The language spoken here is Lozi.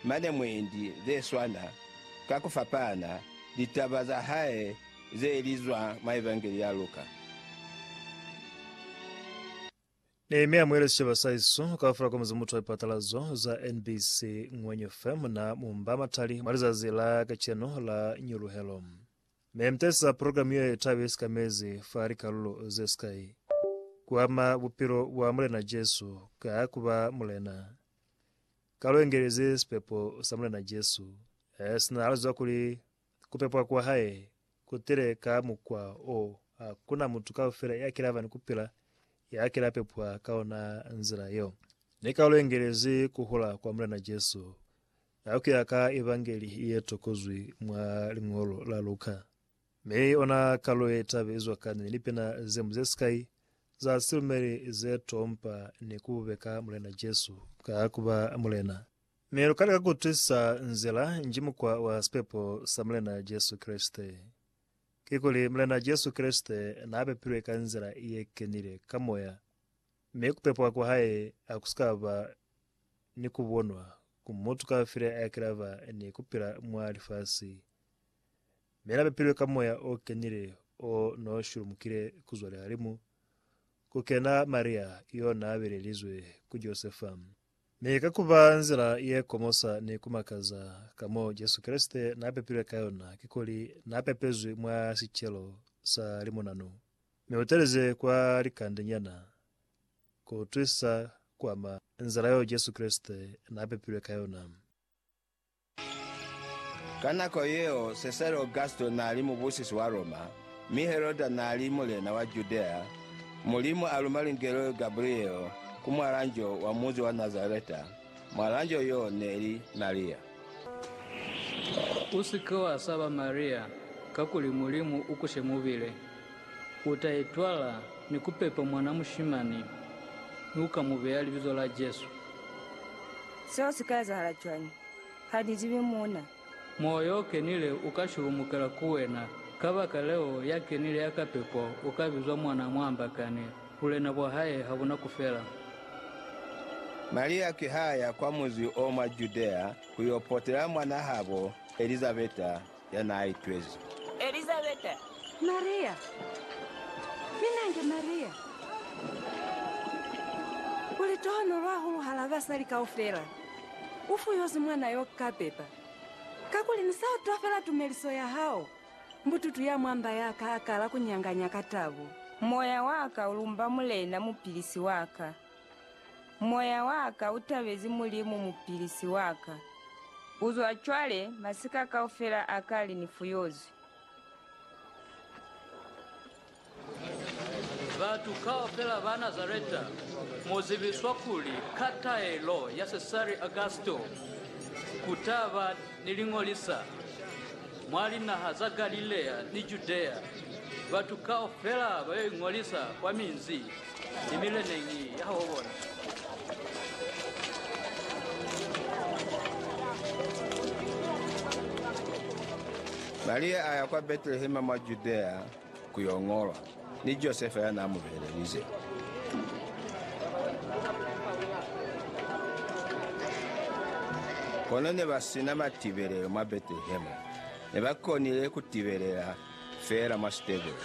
Mane mwendi ze swana, ka ku fapana, litaba za hae ze li zwa mwa Evangeli ya Luka. Nehemia mwe le sicaba sa iso kaufela komizi mutu wa lipatalazo za NBC Ngwenyu FM na mu mba matali mwa lizazi la kacenu la Nyuluhelo. Me mutahisa program ye taba ye sikamezi fa likalulo ze sikai, Ku ama bupilo bwa Mulena Jesu ka ku ba Mulena. Ka lu engelezi sipepo sa Mulena Jesu, sina ha lu ziba kuli ku pepwa kwa hae ku tile ka mukwa o ha ku na mutu kaufela ya kila ba ni ku pila ya kila pepwa ka ona nzila yeo. Ne ka lu engelezi ku hula kwa Mulena Jesu ha ku ya ka Evangeli ye tokozwi mwa liñolo la Luka. Mi ona kalo ye tabe izwa kani ni lipina zemu zesikai za silumeli ze to mpa ni kububeka Mulena Jesu ka kuba Mulena. Mi luka lika kutwisisa nzila nji mukwa wa sipepo sa Mulena Jesu Kreste. Kikuli, Mulena Jesu Kreste naa pepilwe ka nzila ye kenile ka Moya, mi kupepwa kwa Hae hakusika ba ni kubonwa ku mutu kafile ayakilaba ni kupila mwa lifasi. Mi la bapilwe ka Moya o Kenile o no shulumukile ku zwa lihalimu, ku kena Maria yo na belelizwe ku Josefa. Mi ka ku ba nzila ye komosa ni ku makaza ka mo Jesu Kreste na pepilwe ka yona, kikuli na pepezwi mwa sicelo sa limunanu, mi u telize kwa likande nyana, ku utwisa ku ama nzila yo Jesu Kreste na pepilwe ka yona. Ka nako yeo Sesare Augusto nali mubusisi wa Roma, mi Heroda nali mulena wa Judea, Mulimu aluma lungelo Gabriele ku mwalanjo wa munzi wa Nazareta, mwalanjo yo neli Maria. Usike wasaba Maria, kakuli Mulimu ukushe mubile, U ta itwala ni ku pepa mwana mushimani, mi u ka mu beya libizo la Jesu. Seo si ka ezahala cwañi? Ha ni zibi muuna. Moya yo Kenile u ka shulumukela ku wena. Kabakaleo, ya kenile ya ka pepo u ka bizwa mwana a muambakani, bulena bwa hae ha bu na ku fela. Maria ki ha ya kwa muzi o mwa Judea ku yo potela mwanahabo Elizabeta. Ya n'a itwezi. Elizabeta. Maria. Mi nange Maria u litohonolo hahulu hal'a basali kaufela. U fuyozi mwana yo ka pepa, kakuli ni sa utwa fela tumeliso ya hao. Mbututu ya mwa mba ya ka a kala ku nyanganya ka tabo. Moya wa ka u lumba Mulena, Mupilisi wa ka. Moya wa ka u tabezi Mulimu Mupilisi wa ka. Ku zwa cwale, masika kaufela a kale ni fuyozwi. Batu kaufela ba Nazareta, mu zibiswa kuli, Ka taelo ya Sesari Augusto, ku ta ba Ni li ñolisa mwa linaha za Galilea ni Judea, batu kaufela ba yo iñolisa kwa minzi ni mileneñi ya habo bona. Maria a ya kwa Betelehema mwa Judea, ku yo ñolwa, ni Josefa ya n'a mu belelize. Kono ne ba si na matibelelo mwa Betelehema, ne ba konile ku tibelela fela mwa sitebele.